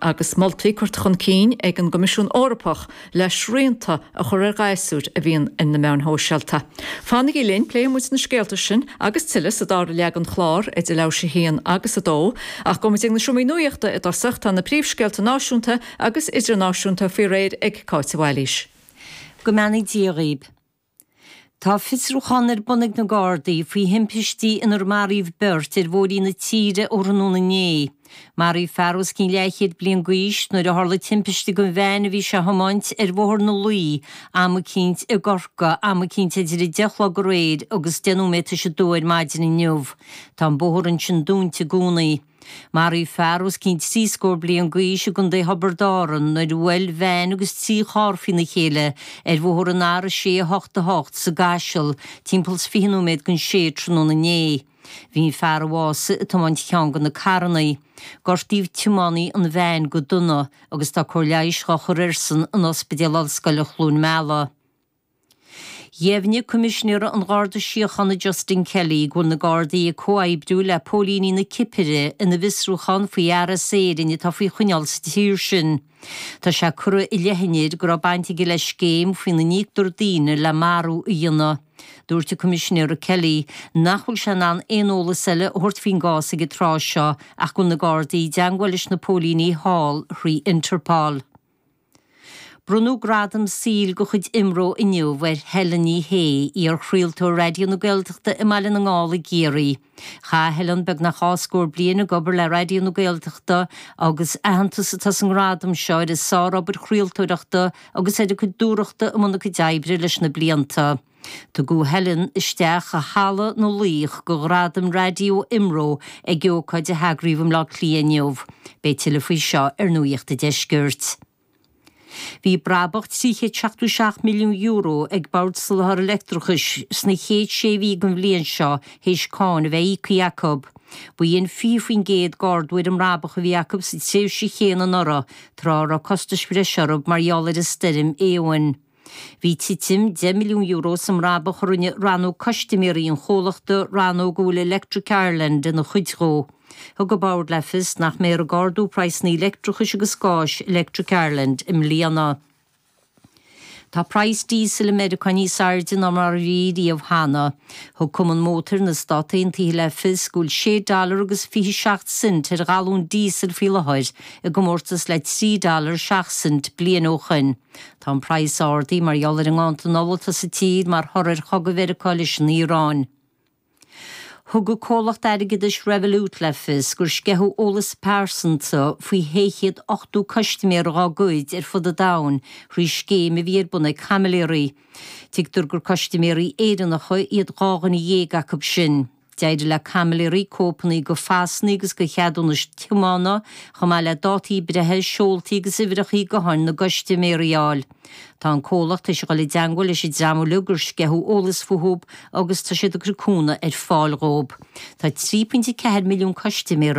agus moltaí curtha chun cinn ag an gCoimisiún Eorpach le srianta a chur ar ghasúir a bhíonn ar na meáin shóisialta. Fanaigí linn, pléifidh muid na scéalta sin agus tuilleadh sa dara leath den chlár, idir leathuair théis 1 agus 2. Ach gabhfaidh muid ag an Seomra Nuachta i dtosach, tá na príomhscéalta náisiúnta agus idirnáisiúnta faoi réir ag Cáit Mhaoilís. Go mbeannaí Dia dhaoib. Tá fiosrúchán ar bun ag na Gardaí faoi thimpistí inar maraíodh beirt ar bhóithrí na tíre ó thráthnóna inné. Maraíodh fear os cionn leathchéad bliain d'aois nuair a tharla timpiste den veain a bhí sé a thiomáint ar Bhóthar na Laoi i gCorca am eicínt idir 10 a chlog aréir agus 10 nóiméad théis a dó ar maidin inniu. Tá an bóthar ansin dúnta i gcónaí. Maraíodh fear os cionn trí scór bliain d'aois i gContae Thiobraid Árann nuair a bhuail veain agus trí charr faoina chéile ar bhóthar an R688 sa gCaiseal, timpeall 20 nóiméad don sé tráthnóna inné. Bhí an fear a bhásaigh ag tiomáint cheann de na carrannaí. Gortaíodh tiománaí an veain go dona agus tá cóir leighis dhá cur air san in Ospidéal Ollscoile Chluain Meala. Dheimhnigh Coimisinéara an Gharda Síochána Justin Kelly go bhfuil na Gardaí ag comhoibriú le póilíní na Cipire ina bhfiosrúchán faoi fhear as Éirinn atá faoi choinneáil sa tír sin. Tá sé curtha i leith an fhir go raibh baint aige le scéim faoina n-íoctar daoine le marú a dhéanamh. Dúirt an Coimisinéara Kelly nach bhfuil sé in ann aon eolas eile a thabhairt faoin gcás ag an tráth seo ach go bhfuil na Gardaí i dteagmháil leis na póilíní thall thrí Interpol. Bronnadh Gradam Saoil de chuid Imro inniu ar Helen Ní Shé, iarchraoltóir Raidió na Gaeltachta i mBaile na nGall i gCiarraí. Chaith Helen beagnach dhá scór bliain ag obair le Raidió na Gaeltachta agus aitheantas atá sa ngradam seo ar a sárobair chraoltóireachta agus ar a cuid dúthrachta i mbun a cuid oibre leis na blianta. Tugadh Helen isteach i Halla na Laoch de Ghradaim Raidió Imro ag ócáid a eagraíodh i mBleá Cliath inniu. Beidh tuilleadh faoi seo ar Nuacht an Deiscirt. Bhí brabach €377 milliún ag an mBord Soláthair Leictreachais sna chéad sé mhí den bhliain seo théis cáin a bheith íoctha acu. B'ionann 20% d'ardú ar an mbrabach a bhí acu sa tréimhse chéanna anuraidh, tráth a raibh costais bhreise orthu mar gheall ar an Stoirm Éowyn. Bhí titim €10 milliún sa mbrabach a rinne rannóg custaiméirí an chomhlachta, rannóg a bhfuil Electric Ireland ina chuid dhe. Thug an Bord le fios nach mbeifear ag ardú praghsanna leictreachais agus gáis Electric Ireland i mbliana. Tá praghas díosail i Meiriceá níos airde ná mar a bhí riamh cheana. Thug Cumann Mótair na Stát Aontaithe le fios go bhfuil sé dollar agus fiche seacht cent ar ghalún díosail faoi láthair, i gcomórtas le trí dollar seacht cent bliain ó shoin. Tá an praghas ardaithe mar gheall ar an nganntan ola atá sa tír mar thoradh ar chogadh Mheiriceá leis an Iaráin. Thug an comhlacht airgeadais Revolut le fios gur sceitheadh eolas pearsanta faoi shé chéad ochtó custaiméir dá gcuid ar fud an domhain thrí scéim a bhí ar bun ag caimiléirí. Tuigtear gur custaiméirí Éireannacha iad dhá dhuine dhéag acu sin. D'éirigh le caimiléirí cóipeanna de phasanna agus de cheadúnais tiomána, chomh maith le dátaí breithe, seoltaí agus uimhreacha gutháin na gcustaiméirí a fháil. Tá an comhlacht ag dul i dteangmháil leis an dream uilig gur sceitheadh eolas fúthu agus tá siad ag cur cúnamh ar fáil dhóibh. Tá 3.4 milliún custaiméir